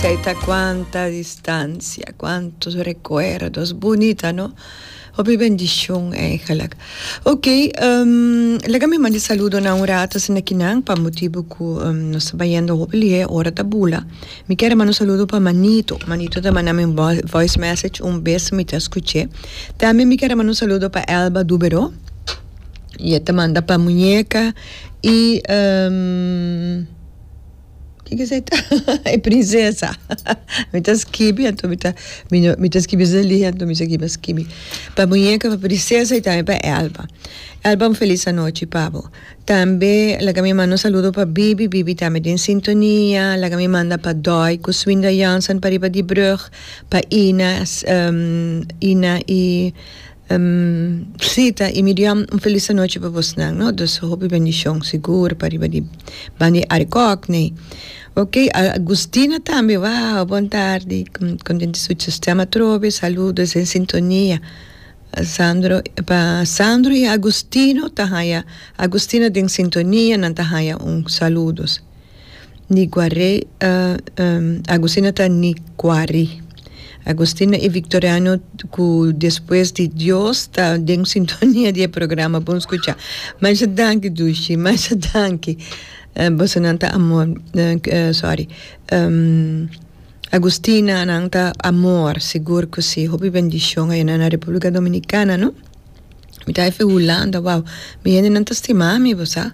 Kei ta kuanta distansia, kuantu rekuerdos bunita no. Hopi bendishon eigenlik. Ok, laga mi manda e saludonan un rato asina kinan pa motibu ku nos ta bayendo hopi lihé, ora ta bula. Mi kier a manda un saludo pa Manito. Manito ta manda mi un voice message un bes mi ta skuch'é. Tambe mi kier a manda un saludo pa Elba Dubero i e ta manda pa muñeka i. kiko esei ta e prinsesa mi ta skibi anto mi ta mi ta skibi esei lihia anto mi segui a skibi pa muñeca pa prinsesa y tambe pa elba elba un feliz anochi pa bo tambe laga mi manda un saludo pa bibi bibi tambe den sintonia laga mi manda pa doy cu swinda Jansen pariba di brug pa Ina Ina y Sí, ta y mi diam un feliz anochi pa bos nan no, dus hopi bendicion sigur pariba di ban di arikòk nee. Ok Agustina tambe wao bon tardi contenti su sistema atrobe saludo es en sintonia Sandro pa Sandro y Agustino ta haya Agustina den sintonia nan ta haya un saludos. Ni guaré a Agustin a ta ni guari. Agustin i Victoriano ku despues di Dios ta den sintonia di e programa bon skucha. Masha danki Dushi masha danki boso nan ta amor sorry Agustina nan ta amor sigur ku si hopi bendishon a yuna na Republica Dominicana no. Mi ta efe Hulanda, wou, mi hendenan ta stima mi bo sa.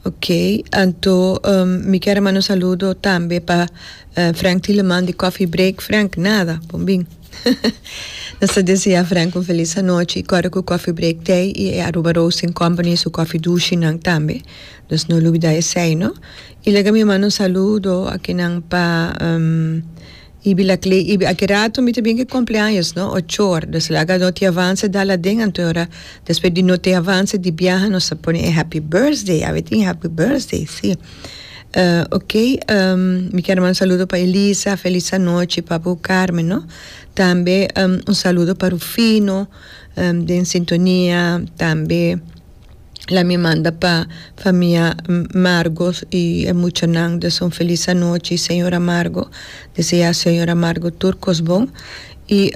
Ok, anto mi kier a manda un saludo tambe pa Frank Tieleman di Coffee Break. Frank, nada, bon bin. Nos ta desea Frank un felis anochi, kòrda ku Coffee Break t'ei i e Aruba Roasting Company su kòfi dushi-nan tambe, nos no lubida esei no. I laga mi manda un saludo akinan pa. Ibi la cle ibi aki rato mi ta bien ke kompleaños no o chor do esla ga no te avanse dal aden anto ora despues di no te avanse di biaha nos a pone e happy birthday awe tin happy birthday si ok mi kier manda un saludo pa Elisa felis anochi pa abu Carmen no tambe un saludo pa Rufino den sintonia tambe. la mi manda pa famia Amargo y e muchanan de Son Feliz anochi y Señor Amargo, desea Señor Amargo tur cos bon y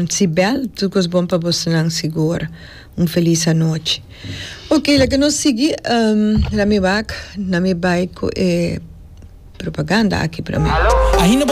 Sibel tur cos bon pa bosonan sigur, un feliz anochi. Ok laga nos sigui la mi wak na mi bay cu e propaganda aki promer.